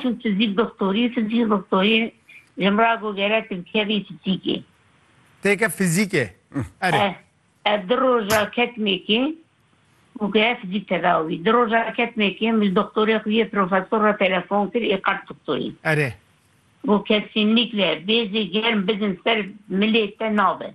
Tu fizîk doktorî, fizîk doktorî ji min re got gere tu bikevî fizîkê. Têke fizîkê? Erê. Ez di roja ketimêkê got gere fizîk tedawi bî. Di roja ketimêkê min ji doktorê xwe yê profesor re telefon kir ê qert doktorî. Erê. Got kesinlikle bêzê germ bidin ser milê te nabe.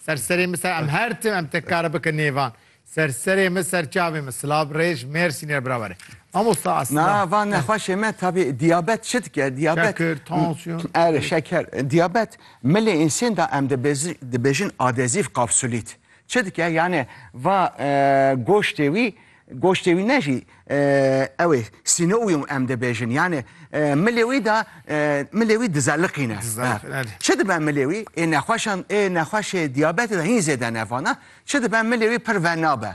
Ser serê min ser em her tim em te kare bikin nêvan ser serê min ser çavê min silav rêj mêrsînê re birawere mamosta aslında Na van nexweşê me tabî diyabet çi dike diyabet Şeker, tansiyon. Erê şeker diyabet milê însên da em dibêzi- dibêjin adezîv kapsulît çi dike yani va e, goştê wî Goştê wî ne jî ew ê sînûyûm em dibêjin yanê milê wî de milê wî dizeliqîne. Çi dibe milê wî ê nexweşan ê nexweşê diyabetê de hîn zêde nevana çi dibe milê wî pir venabe.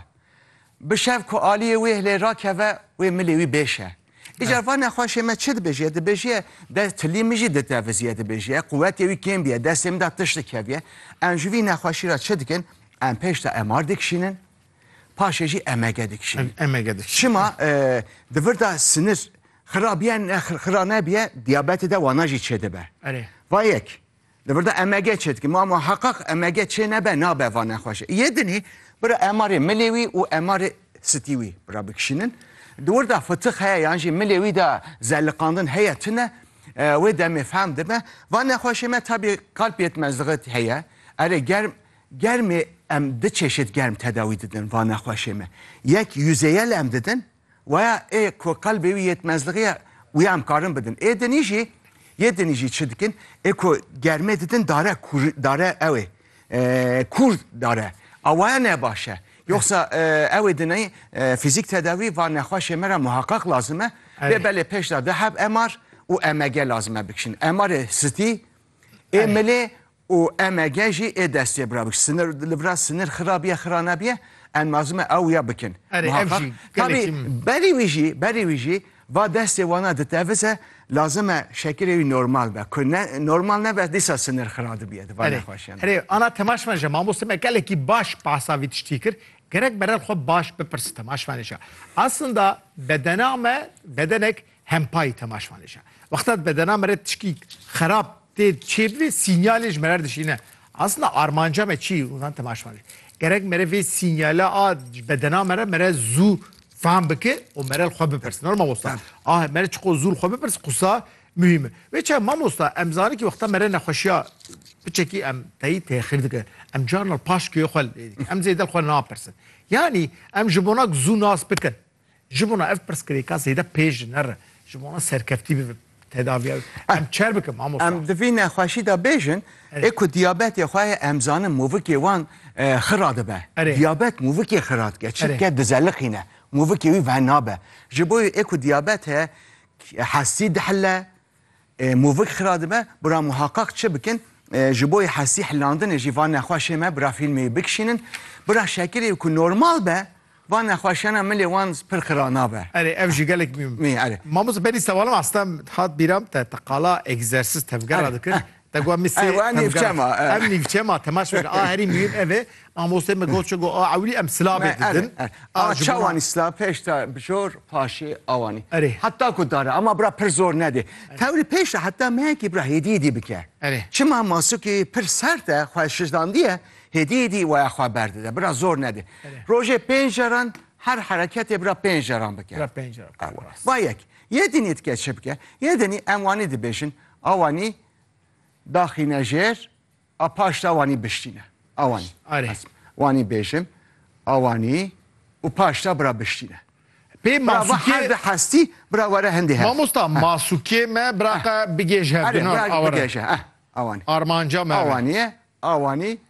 Bi şev ku aliyê wê hilê rakeve wê milê wî bêşe. Îcar va nexweşê me çi dibêjiye dibêjiye de tilî min jî ditevizîye dibêjiye quwetê wî kêm bîye destê min de tişt dikevîye. Em ji vî nexweşî re çi dikin em pêş de MR dikişînin paşê jî emege dikişîne. Emege dikişîne. Çima di vir de sinir xira biye ne xira nebiye diyabetê de wana jî çêdibe. Erê. Va yek. Di vir de emege çêdike. Ma ma heqaq emege çê nebe nabe va nexweşe. Yê dinî bira emarê milê wî û emarê sitî wî bira bikişînin. Di wir de fitix heye yan jî milê wî de zeliqandin heye tune wê demê fehm dibe. Va nexweşê me tabî kalpiyê me ziqit heye. Erê germ Germê em du çeşit germ tedawî didin va nexweşê me. Yek yüzeyel em didin waya ê ku qelbê wî yêtmezlixî ye wî em karin bidin. Ê dinî jî yê dinî jî çi dikin ê ku germê didin dare kûr dare ew ê kûr dare a waya ne baş e. Yoxsa ew ê dinî fîzîk tedawî va nexweşê me re muheqeq lazim e. Lê belê pêşda di heb MR û EMG lazim e bikişin. MRê stî ê milê Û MG jî ê destê bira bik. Sinir li vira sinir xira biye xira nebiye em nazim e ew ya bikin. Erê ev Muhakkak. jî Tabî gelekî berî wî jî berî wî jî va destê wana ditevize lazim e şekilê wî normal be. Ku ne normal nebe dîsa sinir xira dibiye di van Erê nexweşiyan de. erê ana temaşmeje mamoste me gelekî baş behsa vî tiştî kir. Gerek berel xwe baş bipirsin temaşmenêşa. Aslında bedena me bedenek Hempayî temaşvanê şa. Wexta di bedena me re tişkî xerab tê çêbivê sînyalê ji me re dişîne. Aslında armanca me çi unan temaşvanê. Gerek me re vê sînyala a ji bedena me re me re zû fam bike û me re li xwe bipirsin. Nor mamosta. A me re çiqo zû li xwe bipirs qisa mühim e. Vê çav mamosta em zanî ki wexta me re nexweşiya biçekî em teyî têxir dike. Em carna li paşkê xwe lê dikin. Em zêde li xwe napirsin. Yanî em ji bonak zû nas bikin. Ji bona ev pirsgirêka zêde pêş nere, ji bona serkeftî bi tedaviya em çer bikin mamosta. Em di vî nexweşî de bêjin, ê ku diyabetê xwe ye em zanin movikê wan xira dibe. Diyabet movikê xira dike çimke dizeliqîne, movikê wî venabe. Ji bo ê ku diyabet heye hestî dihile, Movik xira dibe bira muhaqaq çi bikin, ji bo hesî hilandinê jî van nexweşê me bira fîlmê bikişînin. Bira Şakirê ku normal be van nexweşiyana milê wan pir xira nabe. Erê ev jî gelek mîm. Mîm erê. Mamosta benî sewalan asta hat bîra te te qala egzersiz tevgera dikir Tegwa mi sê em gel em nîvçe ma temaş bike a herî mîm ev e mamostê me got çigo a ewlî em silabê didin a çawanî sila pêşta bijor paşê awanî erê heta ku dare ama bira pir zor nedê tewlî pêşta heta meyekî bira hêdî hêdî bike erê çima masukî pir sert e xwe şijdandiye hêdî hêdî waya xwe berdide bira zor nedê rojê pênc caran her hereketê bira pênc caran bike vayek yê dinî dike çi bike yê dinî em wanî dibêjin A wanî daxîne jêr a paş de wanî biştîne. A wanî. Arê. Wanî bêjim. A wanî û paş de bira biştîne. Pê masukê her hestî bira were hindê her. Mamosta masukê me bira qe bigêje. Arê bira bigêje. A wanî. Armanca me. A wanî. A wanî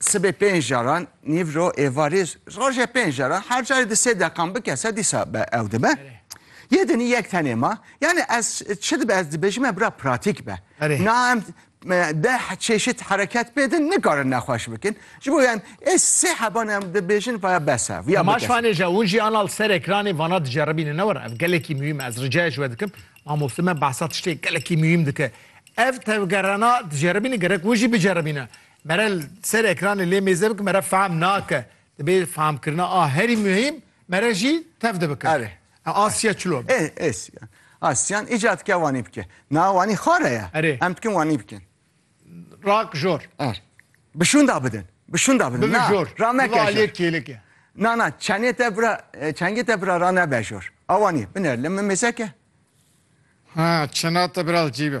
Sibê pênc caran nîvro êvarî rojê pênc caran her carî di sê deqan bikese dîsa be ew dibe. Yê dinî yek tenê ma yani ez çi dibe ez dibêjim me bira pratîk be. Na em deh çeşit hereket pê din nikarin nexweş bikin. Ji bo yan ê sê heban em dibêjin vaya bes e. Vîya Maş fanê je hûn jî anal ser ekranê vana diceribîne ne were ev gelekî muhîm e ez ricaya ji we dikim mamoste me behsa tiştê gelekî muhîm dike. Ev tevgerana diceribîne gerek hûn jî biceribîne. Mere li ser ekranê lê mêze bik mere fehm nake. Dibê fehmkirina a herî muhîm mere jî tev de bike. Erê. Ew asiya çilo be. Ê êsiyan. Asiyan îca dike wanî bike. Na wanî xare ye. Erê. Em dikin wanî bikin. Rak jor. Er. Bi şûnda bidin. Bi şûnda bidin. Bibi jor. Na. Ra meke jor. Bibi aliyê kêlik e. Na na çenê te bira çengê te bira ra nebe jor. A wanî biner li min mêzeke. Ha çena te bira li cî be.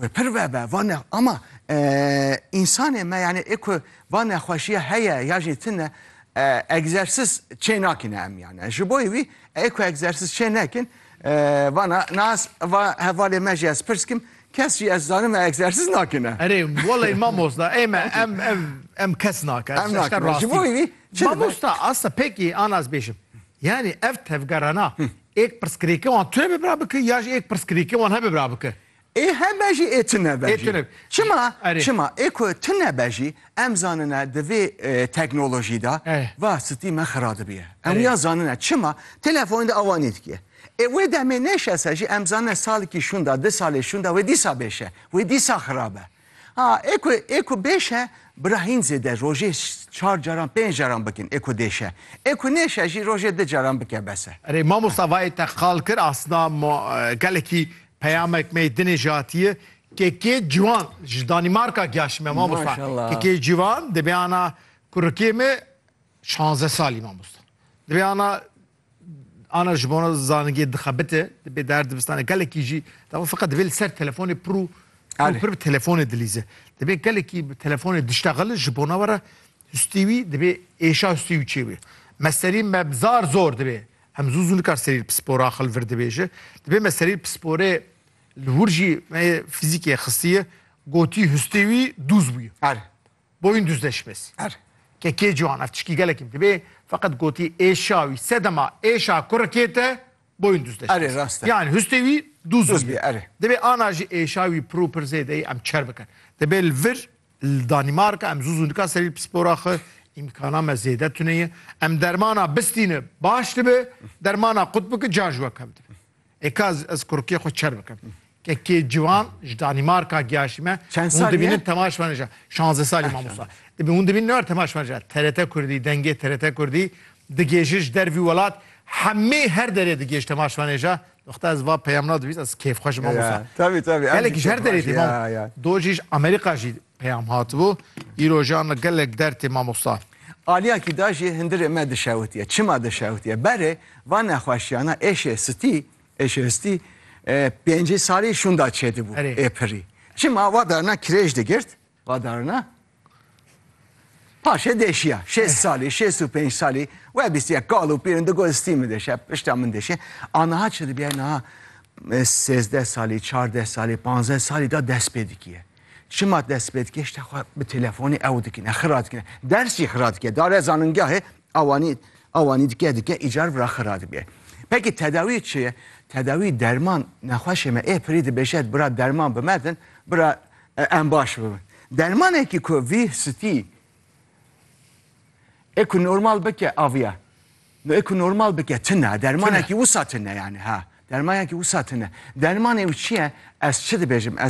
Wê pir vebe va ne ama însanê me yanî ê ku va nexweşiya heye ya jî tune egzersiz çê nakine em yani. Ji boî wî ê ku egzersiz çê nekin vana nas va hevalê me jî ez pirs kim kes jî ez zanim me egzersiz nakine. Erê welay mamosta ê me em ev em kes nake. Em nake ji boî wî mamosta asta pêkî anas bêjim. Yanî ev tevgerana êk pirsgirêkê wan tune bibra bike ya jî êk pirsgirêkê wan hebibra bike? Ê hebe jî ê tune be jî. Çima? Çima? Ê ku tune be jî em zanine di vê teknolojî de va stî me xira dibiye. Em wiya zanine. Çima? Telefonê de awa nêdikiye. Ê wê demê nêşese jî em zanine salekî şûnda, di salê şûnda wê dîsa bêşe, wê dîsa xira be. Ha ê ku ê ku bêşe bi ra hîn zêde rojê çar caran pênc caran bikin ê ku dêşe. Ê ku nêşe jî rojê du caran bike bes e. Erê mamosta vayê te qal kir asna ma gelekî peyamek mey dinê jatiye kekê ciwan ji Danîmarka giyaşî me mamosta kekê ciwan dibê ana kurikê me şanze salî mamosta dibê ana Ana ji bona zanîngê dixebite, dibê der dibistanê gelekî jî dema feqet divê li ser telefonê pir û Erê. pir bi telefonê dilîze. Dibê gelekî bi telefonê diştexile ji bona we re hustî wî dibê êşa hustî û çê wî. Me serî me bi zar zor dibê. Em zû zû nikar serî li pispor axil vir dibêje. Dibê me serî li pisporê li wir jî me yê fizîkê xistiye gotî hustê wî dûz bûye. Erê. Boyun duz de şibes. Er. Kekê ciwan ev tişkî gelekî dibê feqet gotî êşa wî sedema êşa kurikê te boyun duz de şibes. Erê rast e. Yan hustê wî duz Duz bî bî erê. Dibê ana jî êşa wî pir û pir zêde yî em çer bikin. Dibê li vir li Danîmarka em zû zû nika serî pispora xwe îmkana me zêde tune ye. Em dermana bistîne baş dibe, dermana qut bike ca ji we kevdibe. Ê ka ez ez kurikê xwe çer bikim. Kekê ciwan ji Danîmarka giyaşî me. Çend Hûn salî ye? dibînin Tema Şmeneja. Şanze salî Ah, mamosta. şanze. Dibî hûn dibînin ne war Tema Şmeneja. TRT Kurdî, dengê TRT Kurdî digêjin ji der vî welat. Hemî her derê digêj Tema Şmeneja. Doxta ez va peyam nadivîs ez kêfxweş im Ya, mamosta. ya. Tevî tevî. em Gelek jî ji her derê kêfxweş, dî mam. ya, ya. Dojî ji Amerîka jî Peyam hatibû, Îro jî anî gelek derd tê mamosta. Aliya kî da jî hundirê me dişewitiye. Çima dişewitiye? Berê van nexweşiyana êşê sitî, ADHD, pêncî salî şûnda çêdibû Erê. ê pirî. Çima va darina kirêj digirt, va darina paşê dêşiya. Şêst salî, şêst û pênc salî we bîstiye kal û pîrin digot stî min dêşe, pişta min dêşe. A niha çi dibiye? Niha e, sêzdeh salî, çardeh salî, panzdeh salî da dest pê dikiye. Çima destpêdkêşte xwe bi telefonê ew dikine, xira dikine. Ders jî xira dike. Dare zanîngehê awanî awanî dike dike îcar vira xira dike. Peki tedawî çi ye? Tedawî derman nexweşê me ê pirî dibêje bira derman bi me din, bira em baş bibin. Dermanekî ku vî stî ê ku normal bike aviya. No ê ku normal bike tine. Dermanekî wisa tine yani ha. Dermanekî wisa tine. Dermanê ew çi ye? Ez çi dibêjim? Ez